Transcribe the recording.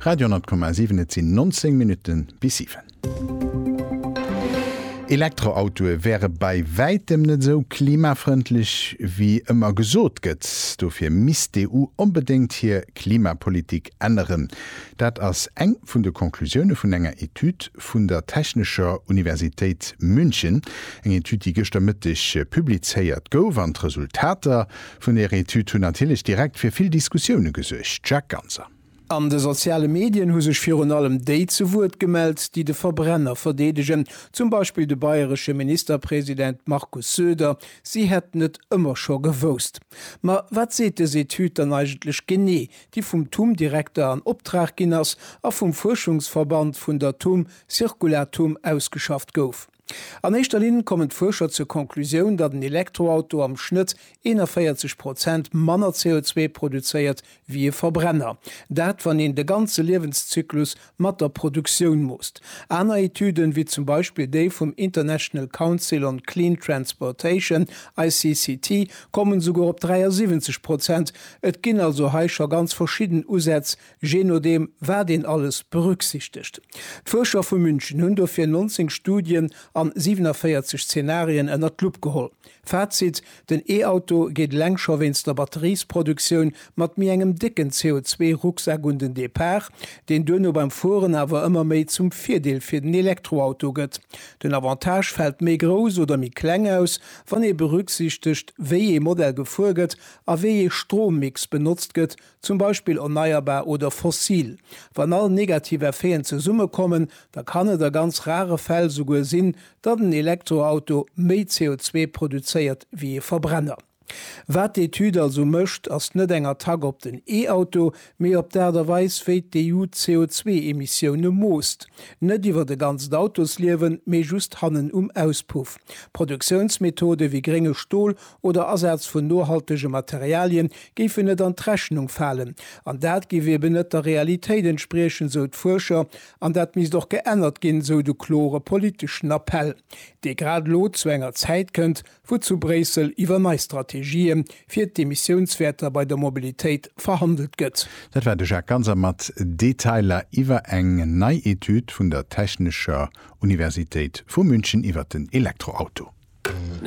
Radio 10,7 Et sinn 19 Minutte bis 7. Elektroautoe wäre bei wäitem net esou klimafrëndlech wéi ëmmer gesot gëtt. Dofir misst d'EU onbedéngt hir Klimapolitik änneren. Dat ass eng vun de Conclusioune vun enger Etüd vun der Technescher Universitéit München. Eng Etüd, déi gëschter Mëtteg publizéiert gouf. An d'Resultater Vun Ärer Etüd hunn natierlech direkt fir vill Diskussioune gesuergt, Jacques Ganser. An de soziale Medien hu sech virun allem déi zu Wuert gemellt, déi de Verbrenner verdeedegen, zum Beispill de bayresche Ministerpresident Markus Söder, si hätten et ëmmer scho gewousst. Ma wat seet dës Etüd dann eigentlech genee, déi vum TUM-Direkter an Optrag ginn ass a vum Fuerschungsverband vun der TUM Circulatum ausgeschafft gouf? An éischter Linn kommen d'Fuerscher zur Conclusioun, datt en Elektroauto am Schnëtt 41 Prozent manner CO2 produzéiert wéi e Verbrenner. Dat, wann een de ganze Liewenszyklus mat der Produktioun moosst. Aner Etüden, wéi zum Beispill déi vum International Council on Clean Transportation, ICCT, kommen esouguer op 73 Prozent. Et ginn also hei scho ganz verschidden Usätz, je nodeem wat een alles berücksichtegt. D'Fuerscher vu München hunn dofir 19 Studien an 47 Zenarien ënnert d'Lupp geholl. Fazit, den E-Auto geet eleng scho wéinst der Batteriesproduktioun mat méi engem décken CO2-Rucksak un den Depart, deen duerno beim Fueren awer ëmmer méi zum Virdeel fir den Elektroauto gëtt. Den Avantage fält méi grouss oder méi kleng aus, wann ee berücksichtegt, wéi ee Modell gefuer gëtt a wéi ee Strommix benotzt gëtt, zum Beispill erneierbar oder fossil. Wann all negativ Effeten zesummekommen, da kann et a ganz rare Fäll souguer sinn, datt en Elektroauto méi CO2 produzéiert wéi ee Verbrenner. Wat d'Etüd also mécht, ass net eng Attack op den E-Auto, mee op d'Aart a Weis, wéi d'EU d'CO2-Emissioune moosst. Net iwwert e ganzt Autosliewen, mee just hannen um Auspuff. Produktiounsmethode wéi grénge Stol oder Asaz vun nohaltege Materialien géifen net an d'Rechnung falen. An dat géif eben net der Realitéit entspriechen, sou d'Fuerscher, an dat misst och geännert ginn, sou de klore politeschen Appell, dee grad elo zu enger Zäit kënnt, wou zu Bréissel iwwer nei Strategië fir d'Emissiounswäerter bei der Mobilitéit verhandelt gëtt. Dat war de Jacques Ganser mat Detailer iwwer eng nei Etüd vun der Technescher Universitéit vu München iwwer den Elektroauto.